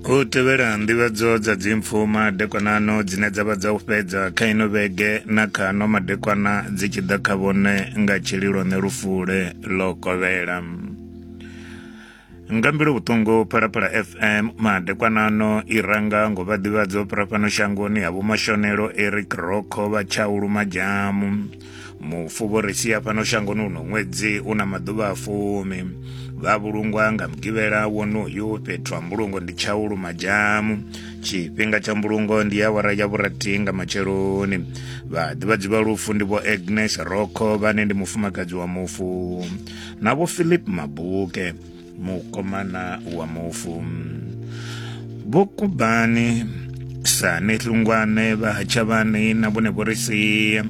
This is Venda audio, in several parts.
u tevhela nḓivhadzo dza dzimpfu madekwanano dzine dza vha dza u fhedza kha ino vhege na kha no madekwana dzi tshi ḓa kha vhone nga tshililo ne lufule ḽo kovhela nga mbilu vhuṱungu phalaphala fm madekwanano i ranga ngo vha ḓivhadzo fhira fhano shangoni ha vhomashonelo eric roko vha tshaulu majamu mufuvhoresia fhano shangoni uno ṅwedzi u na maḓuvha a fumi vha vhulungwa nga mugivhela wonoyu fhethu ha mbulungo ndi tshaulu madzamu tshifhinga tsha mbulungo ndi ya wara ya vhurathi nga matsheloni vhaḓivhadzi vha lufu ndi vho agnes roko vhane ndi mufumakadzi wa mufu na vho philip mabuke mukomana wa mufu vhokubani sani hlungwane vha hatshavhani na vhone vho ri sia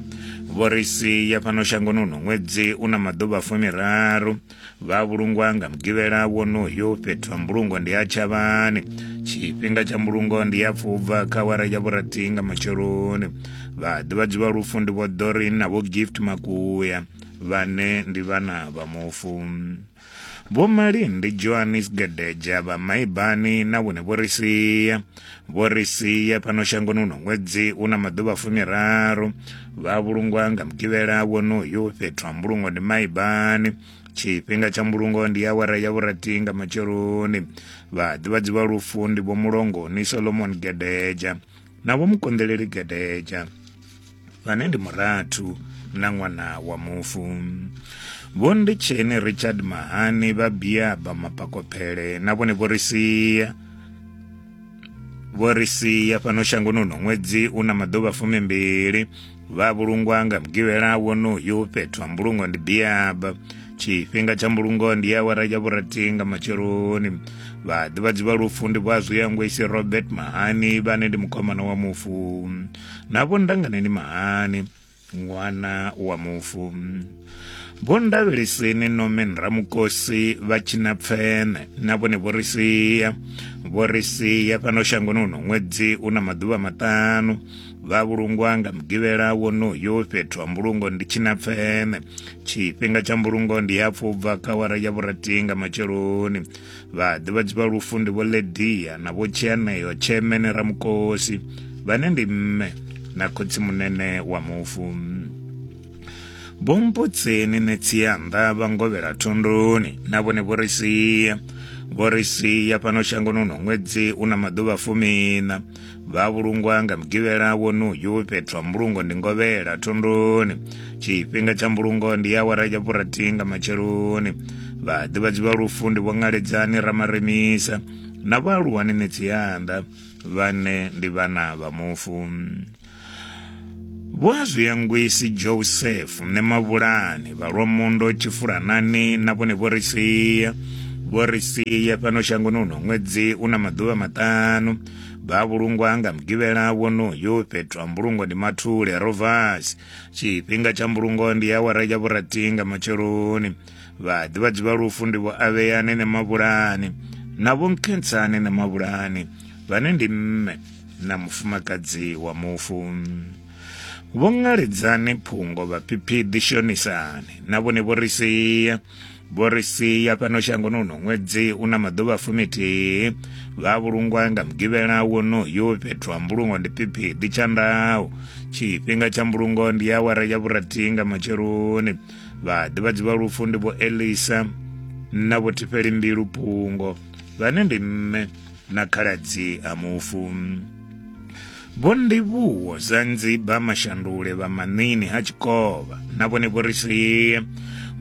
vho ri sia fhano shangoni uno ṅwedzi u na maḓuvha fumiraru vha vhulungwa nga mugivhela wonoyo fhethu ha mbulungo ndi ha tshavhani tshifhinga tsha mbulungo ndi ya pfubva kha wara ya vhurathi nga matsheloni vhaḓivhadzi vha lufu ndi vho dorin na vho gift makuya vhane ndi vhana vha mufu Vho Malindi Johannes Gedeja vha Maibani na vhone vho ri sia vho ri sia fhano shangoni uno ṅwedzi u na maḓuvha fumiraru vha vhulungwa nga mugivhela wonoyu fhethu ha mbulungo ndi Maibani tshifhinga tsha mbulungo ndi awara ya vhurathi nga matsheloni vhaḓivhadzi vha lufu ndi vho mulongoni solomon gedeja na vho mukonḓeleli gedeja vhane ndi murathu na ṅwana wa mufu vho nditsheni richard mahani vha biaba mapakophele na vhone vho ri sia vho ri sia fhano shangoni uno ṅwedzi u na maḓuvha fumimbili vha vhulungwa nga mugivhela wonoyu fhethu ha mbulungo ndi biaba tshifhinga tsha mbulungo ndi awara ya vhurathi nga matsheloni vhaḓivhadzi vha lufu ndi vhazwi ya ngwesi robert mahani vhane ndi mukhomana wa mufu na vho ndangane ndi mahani ṅwana wa mufu vho ndavheliseni nomen ramukosi vha tshina pfene na vhone vho ri sia vho ri sia fhano shangoni uno ṅwedzi u na maḓuvha maṱanu vha vhulungwa nga mugivhela wonoyo fhethu ha mbulungo ndi tshina pfene tshifhinga tsha mbulungo ndi hapfu u bva kha wara ya vhurathi nga matsheloni vha ḓivhadzi vha lufu ndi vho ledia na vho tshianeyo tshemene ramukosi vhane ndi mme na khotsimunene wa mufu vho mbudzeni nṋe tsianda vha ngovhela thunduni na vhone vho ri sia vho ri sia fhano shangoni uno ṅwedzi u na maḓuvha fumina vha vhulungwa nga mugivhela wonoyu fhethu ha mbulungo ndi ngovhela thunduni tshifhinga tsha mbulungo ndi awara ya vhurathi nga matsheloni vhaḓivhadzi vha lufu ndi vho ṅaledzani ramaremisa na vhaaluwani nṋe tsianda vhane ndi vhana vha mufu Vho a zwi angwisi Joseph ne mavhulani vha lwa mondo tshifulanani na vhone vho ri sia vho ri sia fhano shangoni uno ṅwedzi una maḓuvha maṱanu vha vhulungwa nga mugivhela wonoyo fhethu ha mbulungo ndi mathule rovasi tshifhinga tsha mbulungo ndi awara ya vhurathi nga matsheloni vhaḓivhadzi vha lufu ndi vho avheyani ne mavhulani na vho nkhensani ne mavhulani vhane ndi mme na mufumakadzi wa mufu vho ngaledzani phungo vhaphiphidi shonisani na vhone vho ri sia vho ri sia fhano shangoni uno ṅwedzi u na maḓuvha fumithihi vha vhulungwa nga mugivhela wonoyo fhethu ha mbulungo ndi phiphidi tshandaho tshifhinga tsha mbulungo ndi awara ya vhurathi nga matsheloni vhaḓivhadzi vha lufu ndi vho elisa na vho thifheli mbilu pungo vhane ndi mme na khaladzi a mufu vho ndivhuwo za nziba mashandule vha manini ha tshikovha na vhone vho ri sie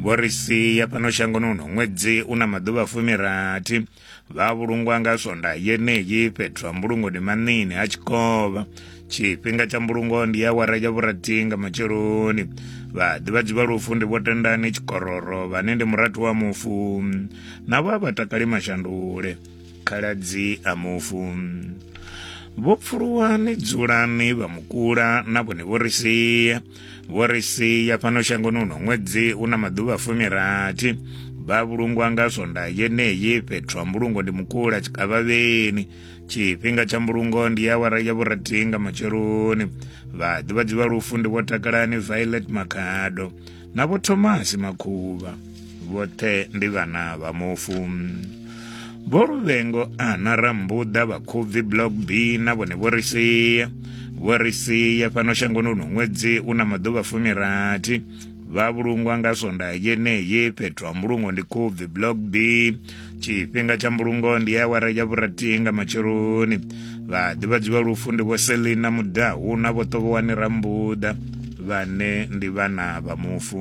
vho ri sia fhano shangoni uno ṅwedzi u na maḓuvha fumirathi vha vhulungwa nga swonda yeneyi fhethu ha mbulungo ndi maṋini ha tshikovha tshifhinga tsha mbulungo ndi ya wara ya vhurathi nga matsheloni vhaḓivhadzi vha lufu ndi vho tendani tshikororo vhane ndi murathu wa mufu navho a vha takali mashandule khaladzi a mufu vho pfuluwani dzulani vha mukula na vhone vho ri sia vho ri sia fhano shangoni uno ṅwedzi u na maḓuvha fumirathi vha vhulungwa nga swonda yeneyi fhethu ha mbulungo ndi mukula tshikavhavheni tshifhinga tsha mbulungo ndi awara ya vhurathi nga matsheloni vhaḓivhadzi vha lufu ndi vho takalani violet makhado na vho thomasi makhuvha vhoṱhe ndi vhana vha mufu vho luvhengo ana rambuḓa vhakhubvi block b na vhone vho ri sia vho ri sia fhano shangoni uno ṅwedzi u na maḓuvha fumirathi vha vhulungwa nga sonda yeneyi fhethu ha mbulungo ndi khubvi block b tshifhinga tsha mbulungo ndi awara ya vhuratii nga matsheloni vhaḓivhadzi vha lufu ndi vho selina mudahu na vho ṱovhowani rambuḓa vhane ndi vhana vha mufu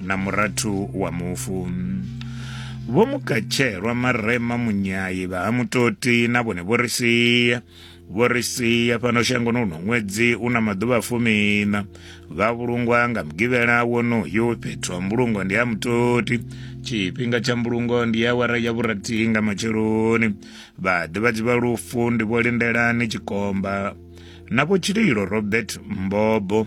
na murathu wa mufu vho mukatshelwa marema munyayi vha ha mutoti na vhone vho ri sia vho ri sia fhano shangoni uno ṅwedzi u na maḓuvha fumina vha vhulungwa nga mugivhela wonoyo fhethu ha mbulungo ndi ha mutoti tshifhinga tsha mbulungo ndi ya wara ya vhurathihi nga matsheloni vhaḓivhadzi vha lufu ndi vho lindelani tshikomba na vho tshililo robert mbobo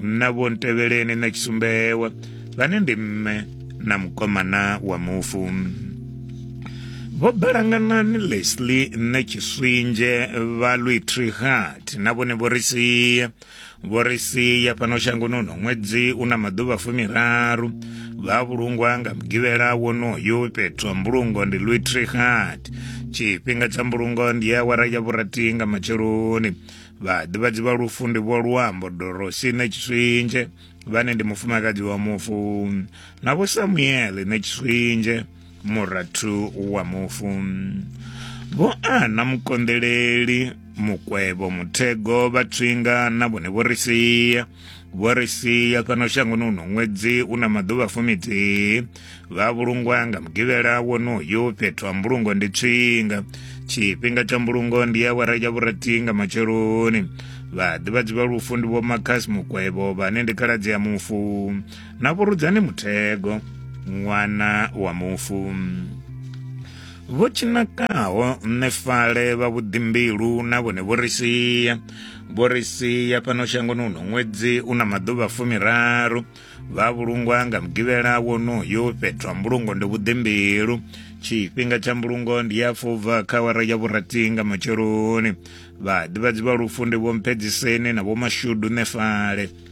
na vho ntevheleni na tshisumbewa vhane ndi mme na mukomana wa mufu vho balanganani lesli nṋe tshiswinzhe vha lwitrihat na vhone vho ri sia vho ri sia fhano shangoni uno ṅwedzi u na maḓuvha fumiraru vha vhulungwa nga mugivhela wonoyo fhethu ha mbulungo ndi lwitrihat tshifhinga tsha mbulungo ndi awara ya vhurathi nga matsheloni vhaḓivhadzi vha lufu ndi vho luambo dorosine tshiswinzhe vhane ndi mufumakadzi wa mufu na vho samuele ne tshiswinzhe murathu wa mufu vho ana mukonḓeleli mukwevho muthego vhatswinga na vhone vho ri sia vho ri sia fhano shangoni uno ṅwedzi u na maḓuvha fumithihi vha vhulungwa nga mugivhela wonoyu fhethu ha mbulungo ndi tswinga tshifhinga tsha mbulungo ndi ya wara ya vhurathi nga matsheloni vhaḓivhadzi vha lufu ndi vho makhas mukwevho vhane ndi khaladzi ya mufu na vhurudzani muthego ṅwana wa mufu vho tshinakaho nṋe fale vha vhuḓimbilu na vhone vho ri sia vho ri sia fhano shangoni uno ṅwedzi u na maḓuvha fumiraru vha vhulungwa nga mugivhela wonoyo fhethu ha mbulungo ndi vhuḓimbilu tshifhinga tsha mbulungo ndi ya fubva kha wara ya vhurathi nga matsheloni vhaḓivhadzi vha lufu ndi vho mphedziseni na vho mashudu nefale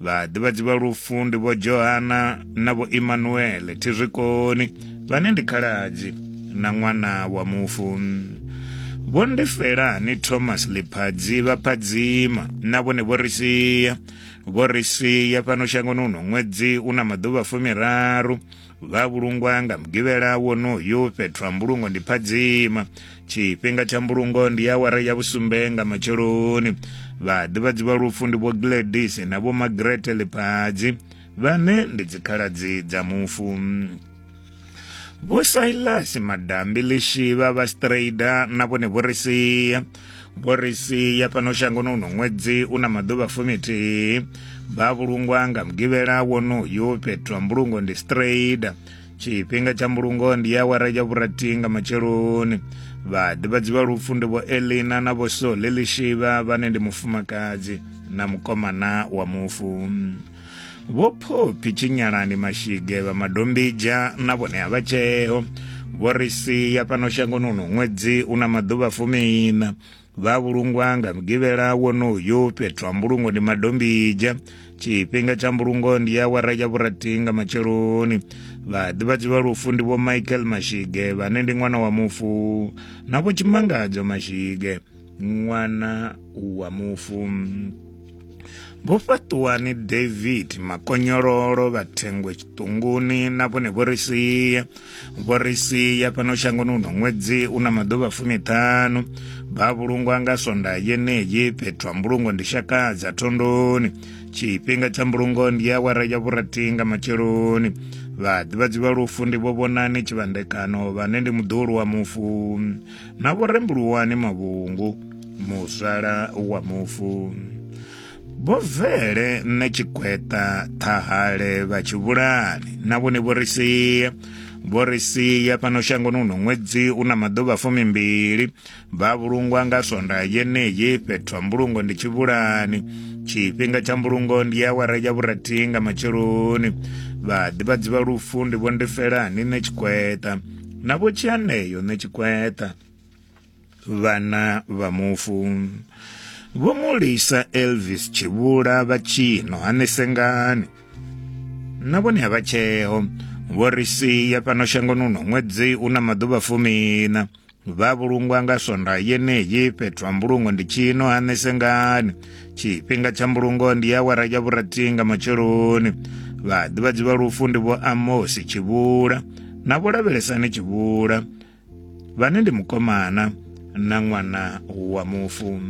vhaḓivhadzi vha lufu ndi vho johana na vho imanuele thizwikoni vhane ndi khaladzi na ṅwana wa mufu vho ndifelani thomas liphadzi vha phadzima na vhone vho ri sia vho ri sia fhano shangoni uno ṅwedzi u na maḓuvha fumiraru vha vhulungwa nga mugivhela wonoyu fhethu ha mbulungo ndi phadzima tshifhinga tsha mbulungo ndi awara ya vhusumbe nga matsheloni vhaḓivhadzi vha lufu ndi vho gladys na vho magrete ḽiphadzi vhane ndi dzikhaladzi dza mufu vho silas madambi lishivha vha strader na vhone vho ri sia Boris ya fhano shangoni uno ṅwedzi u na maḓuvha fumithihi vha vhulungwa nga mugivhela wonoyu fhethu ha mbulungo ndi strada tshifhinga tsha mbulungo ndi ya awara ya vhurathi nga matsheloni vhaḓivhadzi vha lufu ndi vho elina na vho sole lishivha vhane ndi mufumakadzi na mukomana wa mufu vho phophi tshinyalani mashige vha madombija na vhone a vha tsheo vho ri sia fhano shangoni uno ṅwedzi u na maḓuvha fumiiṋa vha vhulungwa nga mugivhela wonoyu fhethu ha mbulungo ndi madombija tshifhinga tsha mbulungo ndi ya wara ya vhurathii nga matsheloni vhaḓivhadzi vha lufu ndi vho michael mashige vhane ndi ṅwana wa mufu na vho tshimangadzo mashige ṅwana wa mufu vho fhaṱuwani david makonyololo vhathengwe tshiṱunguni na vhone vho ri sia vho ri sia fhano shangoni uno ṅwedzi u na maḓuvha fumiṱhanu vha vhulungwa nga sonda yeneyi fhethu ha mbulungo ndi shakadza thondoni tshifhinga tsha mbulungo ndi ya wara ya vhurathi nga matsheloni vhaḓivhadzi vha lufu ndi vho vhonani tshivhandekano vhane ndi muḓulu wa mufu na vho rembuluwani mavhungu muzwala wa mufu vho vele nṋe tshigweṱa ṱhahale vha tshivhulani na vhone vho ri sia vho ri sia fhano shangoni uno ṅwedzi u na maḓuvha fumimbili vha vhulungwa nga swonda yeneyi fhethu ha mbulungo ndi tshivhulani tshifhinga tsha mbulungo ndi ya awara ya vhurathi nga matsheloni vhaḓivhadzi vha lufu ndi vho ndi felani nṋe tshigweṱa navho tshianeyo nṋe tshikweṱa vhana vha mufu vho mulisa elvis tshivhula vha tshino hanesengani na vhone ha vha tsheo vho ri sia fhano shangoni uno ṅwedzi u na maḓuvha fumina vha vhulungwa nga swonda yeneyi fhethu ha mbulungo ndi tshino hanesengani tshifhinga tsha mbulungo ndi awara ya vhurathi nga matsheloni vhaḓivhadzi vha lufu ndi vho amosi tshivhula na vho lavhelesani tshivhula vhane ndi mukomana na ṅwana wa mufu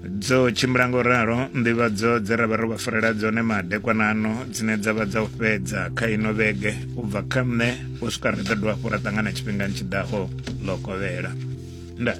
dzo tshimbila ngo ralo nḓivhadzo dze ra vha ro vha farela dzone madekwanano dzine dza vha dza u fhedza kha ino vhege u bva kha nṋe u swika ri ḓo dovha hafhu ra ṱangana tshifhingani tshi ḓaho ḽo kovhela ndaa